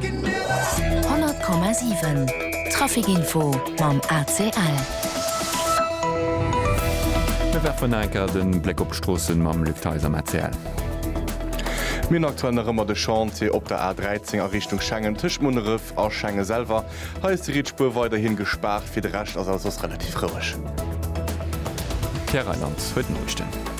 100,7 Trafic-Info mam ACL. Mir werfen nach eng Kéier de Bléck op d'Stroossen mam Luc Theis am ACL. Mir hunn aktuell nach ëmmer de Chantier op der A13 a Richtung Schengen tëscht Munneref a Schengen selwer. Hei ass déi riets Spuer weiderhi gespaart. Fir de Rescht ass alles soss relativ roueg. Pierre Reyland huet d'Noriichten.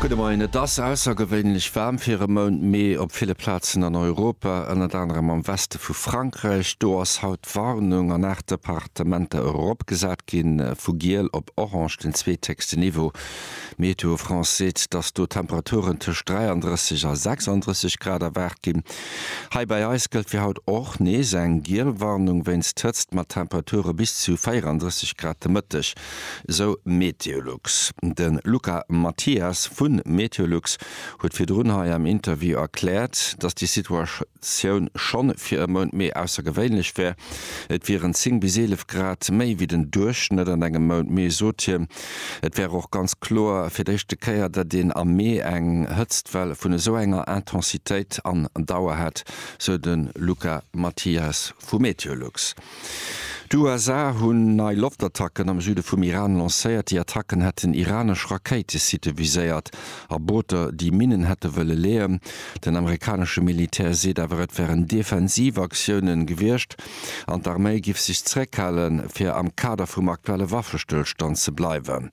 Gudde Moien, Et ass aussergewéinlech waarm fir e Mount Mee op ville Plazen an Europa, ënnert anerem am Weste vu Frankräich. Do ass haut d'Warnung an 8 Departementer eropgesat ginn, vu giel op orange, den zweetécksten Niveau. Météo France seet, dass do Temperaturen tëscht 33 a 36 Grad erwaart ginn. Hei bei eis gëllt fir haut och nees eng giel Warnung wéinst Hëtzt mat Temperature bis zu 34 Grad de Mëtteg. Esou Meteolux. De Luca Mathias vu Meteolux huet virdrun hei am Interview erkläert, datt déi Situatioun scho fir e Mount Mee aussergewéinlech wär. Et wieren 10 bis 11 Grad méi wéi den Duerchschnëtt an engem Mount Mee, sot hien. Et wär och ganz kloer fir d'éischte Kéier, datt een am Mee eng Hëtztwell vun esou enger Intensitéit an Dauer hätt, sou de Luca Mathias vu Meteolux. D'USA hunn nei Loftattacken am Süde vum Iran lancéiert. Déi Attacken hätten iranesch Rakéitesitte viséiert a Booter, déi Minnen hätte wëlle leeën. Den amerikanesche Militär seet awer, et wären defensiv Aktiounen gewiescht an d'Arméi giff sech zeréckhalen, fir am Kader vum aktuelle Waffestëllstand ze bleiwen.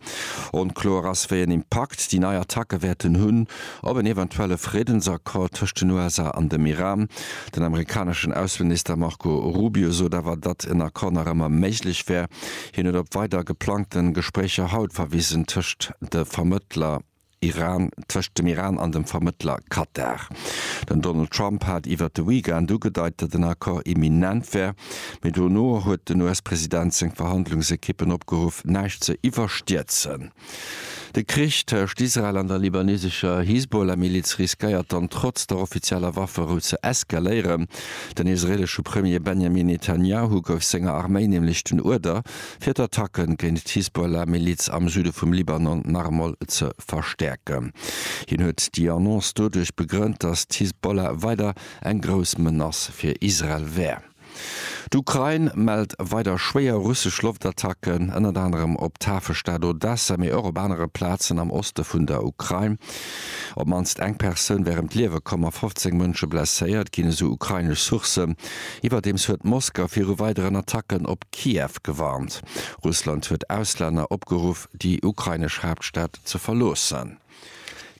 Onkloer ass, wéi en Impakt déi nei Attacke wäerten hunn op en eventuelle Friddensaccord tëscht den USA an dem Iran. Den amerikaneschen Ausseminister Marco Rubio sot awer, datt en Accord nach ëmmer méiglech wär. Hien huet op weider geplangten Gespréicher haut verwisen tëscht de Vermëttler Iran, tëscht dem Iran an dem Vermëttler Katar. Den Donald Trump hat iwwert de Weekend ugedeit, datt en Accord imminent wär, mee dono huet den US-President seng Verhandlungsekippen opgeruff, näischt ze iwwerstierzen. De Krich tëscht Israel an der libanesescher Hisbollah-Miliz riskéiert dann trotz der offizieller Wafferou ze eskaléieren. Den israeelesche Premier Benjamin Netanjahu gouf senger Arméi nämlech den Uerder, fir d'Attacke géint d'Hisbollah-Miliz am Süde vum Libanon nach emol ze verstäerken. Hien huet déi Annonce doduerch begrënnt, datt d'Hisbollah weider eng grouss Menace fir Israel wär. D'Ukrain mellt weider schwéier russesch Loftattacken, ënnert anerem op d'Hafestad Odessa, mee och op anere Plazen am Oste vun der Ukrain. Op d'mannst eng Persoun wär ëm d'Liewe komm a 15 Mënsche blesséiert ginn, esou ukrainesch Sourcen. Iwwerdeems huet Moskau viru weideren Attacken op Kiew gewarnt. Russland huet Auslänner opgeruff, déi ukrainesch Haaptstad ze verloossen.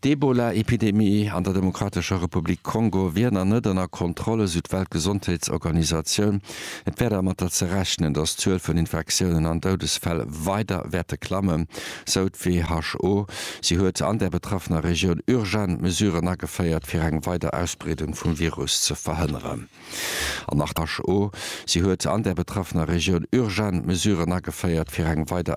D'Ebola-Epidemie an der Demokratescher Republik Kongo wier nach net ënner Kontroll, esou d'Weltgesondheetsorganisatioun. Et wär dermatter ze rechnen, datt d'Zuel vun Infektiounen an Doudesfäll weider wäerte klammen, sou d'WHO. Si huet an der betraffener Regioun urgent Mesuren ageféiert, fir eng weider Ausbreedung vum Virus ze verhënneren. An nach d'WHO. Si huet an der betraffener Regioun urgent Mesuren ageféiert, fir eng weider.